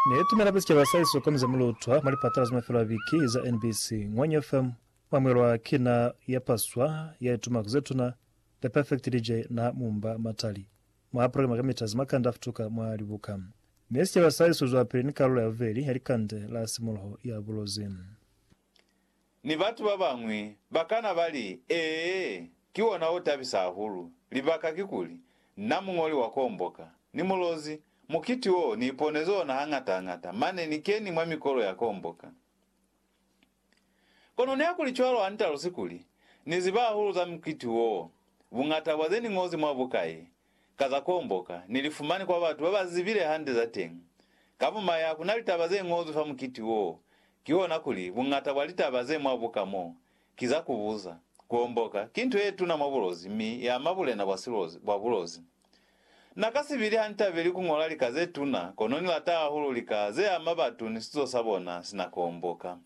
Ne tume lape sicaba sa iso komize mu lutwa mwa lipatala za mafelo a biki za NBC, Ngwanyo FM, mwa mwelwa ki na ya paswa, ya ituma ku zetuna, The Perfect DJ na Mumba Matali, mwa programa kamita za makande a futuka mwa libuka. Ne sicaba sa iso zwapili ni kalulo ya bubeli ya likande la simuluho ya bulozi. Ni batu ba bañwi ba kana ba li, Ee, ki ona o tabisa hahulu. Libaka kikuli, na muñoli wa Komboka! Ni mulozi. Mukiti wo, ni iponezi ona hañata-hañata, mane ni keni mwa mikolo ya Komboka. Kono nihakuli cwalo ha ni talusi kuli, Ni ziba hahulu za mukiti wo, buñata bwa ze ni ñozi mwa buka ye, ka za kuomboka, ni li fumani kwa batu ba ba zibile hande za teñi. Ka bumaya, ku na litaba ze ñozwi fa mukiti woo, kihona kuli, buñata bwa litaba ze mwa buka mo, ki za ku buza. Kuomboka, ki nto ye tuna mwa bulozi mi ya ama bulena bwa silozi, bwa bulozi. Na ka si bili ha ni tabeli ku ñola lika ze tuna, kono ni lata hahulu lika ze ama batu ni sizo sa bona si na kuomboka.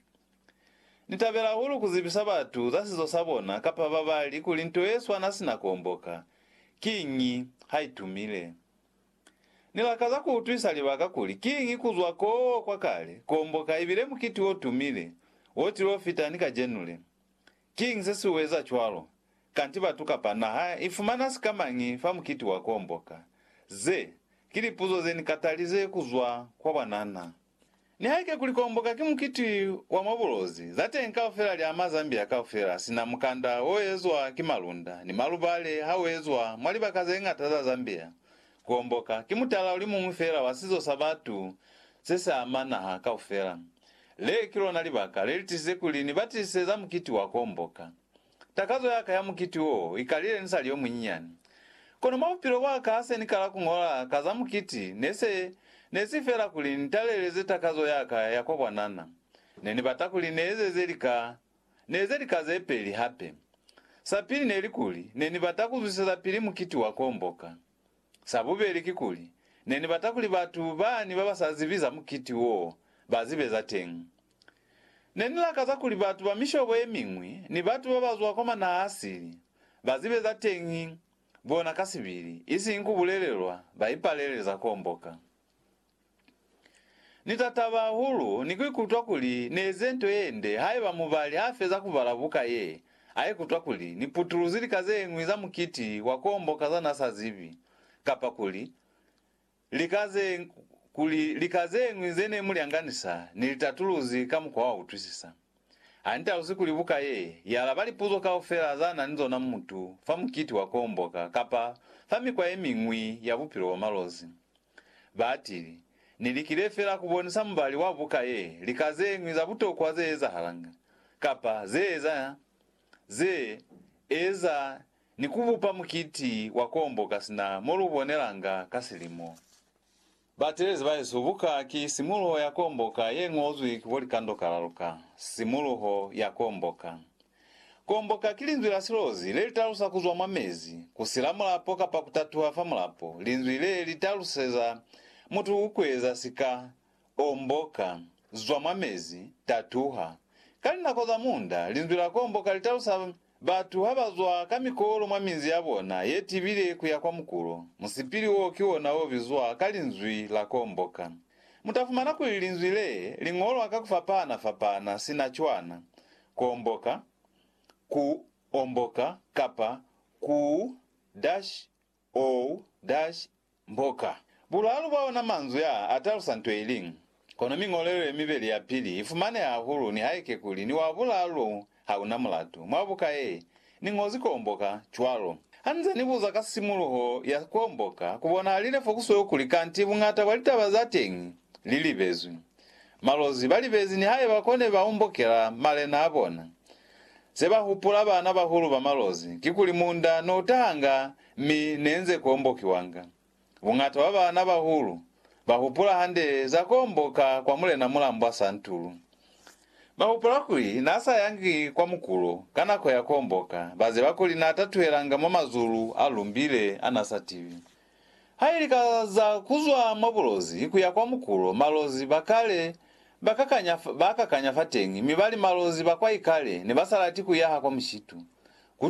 Ni tabela hahulu ku zibisa batu za sizo sa bona kapa ba bali kuli nto ye swana sina ku omboka. Kiñi? Ha i tumile. Ni lakaza ku utwisa libaka kuli kiñi ku zwa koo kwa kale ku omboka ibile mukiti o tumile wo tilo fita ni kajenu le. Kiñi se si u eza cwalo? Kanti batu kapa naha i fumana sikamañi fa mukiti wa ku omboka? Ze ki lipuzo ze ni katalize ku zwa kwa bwanana. Nihaike kuli Komboka ki mukiti wa mwa bulozi, za teñi kaufela li ama Zambia kaufela, sina mukanda o ezwa ki malunda ni malubale ha u ezwa mwa libaka ze ñata za Zambia. Komboka ki mutala o li muñwi feela wa sizo sa batu se si ama naha kaufela. Le ki lona libaka le li tizize kuli ni batisise za mukiti wa Komboka. Takazo yaka ya mukiti wo ikalile nisali yomunyinyani. Kono mwa bupilo bwaka hase nikala kuñola ka za mukiti, nese nesi feela kuli nitaleleze takazo yaka ya kwa bwanana. Nenibata kuli neezeze lika, neeze lika zepeli hape. Sapili neli kuli, nenibata kuzwisezapili mukiti wa kuomboka. Sa bubeli kikuli, ne ni bata kuli batu bani ba ba sa zibi za mukiti wo ba zibe za teñi. Ne ni lakaza kuli batu ba mishobo ye miñwi ni batu ba ba zwa kwa manaha-sili ba zibe za teñi bona ka sibili, isiñi ku bulelelwa ba ipalele za komboka. Ni ta taba hahulu ni ku ikutwa kuli ni eze nto ye nde haiba mubali ha feza ku bala buka ye, a ikutwa kuli ni putuluzi lika ze ñwi za mukiti wa ku omboka za n'a sa zibi, kapa kuli lika ze, kuli lika ze ñwi ze ne mu lyanganisa ni litatuluzi ka mukwa wa utwisisa. Ha ni talusi kuli buka ye ialaba lipuzo kaufela za na ni zona mutu fa mukiti wa kuomboka kapa fa mikwa ye miñwi ya bupilo bwa malozi. Baatili, Ni likile fela ku bonisa mubali wa buka ye lika ze ñwi za butokwa ze ezahalanga, kapa ze eza, ze eza ni ku bupa mukiti wa kuomboka sina mo lu bonelanga ka silimo. Batelezi bahesu, buka ki simuluho ya komboka ye ñozwi ki bo likando kalaluka. Simuluho ya komboka. Komboka ki linzwi la silozi le li talusa ku zwa mwa mezi, ku sila mulapo kapa ku tatuha fa mulapo. Linzwi le li taluseza mutu ku eza sika, omboka, zwa mwa mezi, tatuha. Ka linako za munda, linzwi la komboka li talusa. Batu ha ba zwa ka mikolo mwa minzi ya bona ye tibile ku ya kwa mukulo, musipili woo ki wona o bizwa ka linzwi la komboka. Mu ta fumana kuli linzwi lee li ñolwa ka ku fapahana-fapahana sina cwana, komboka, ku omboka, kapa ku-. Ou, Dash, mboka. Bulaalu bwa ona manzwi aa atalusa nto iliñwi. Kono miñolelo yemibeli yapili ifumaneha hahulu nihaike kuli ni wa bulaalu ou hauna mulatu. Mwa buka ye, niñozi kuomboka, cwalo. Hanize nibuza ka simuluho ya kuomboka, kubonahalile fo kusweu kuli kanti buñata bwa litaba zateñi lilibezwi. Malozi balibezi nihaiba kone baumbokela malena abona. Ze ba hupula baana bahulu ba malozi kikuli munda ne u tahanga mi ne nze kombokiwanga. Buñata bwa baana bahulu ba hupula hande za komboka kwa Mulena Mulambwa Santulu. Ba hupula kuli n'a sa yangi kwa mukulo ka nako ya komboka, ba ziba kuli n'a tatuhelanga mwa mazulu a lumbile a n'a sa tibi. Ha ili ka za kuzwa mwa bulozi kuya kwa mukulo, malozi ba kale ba kakanya, ba kakanya fateñi, mi bali malozi ba kwa ikale ne ba sa lati kuyaha kwa mushitu. Ku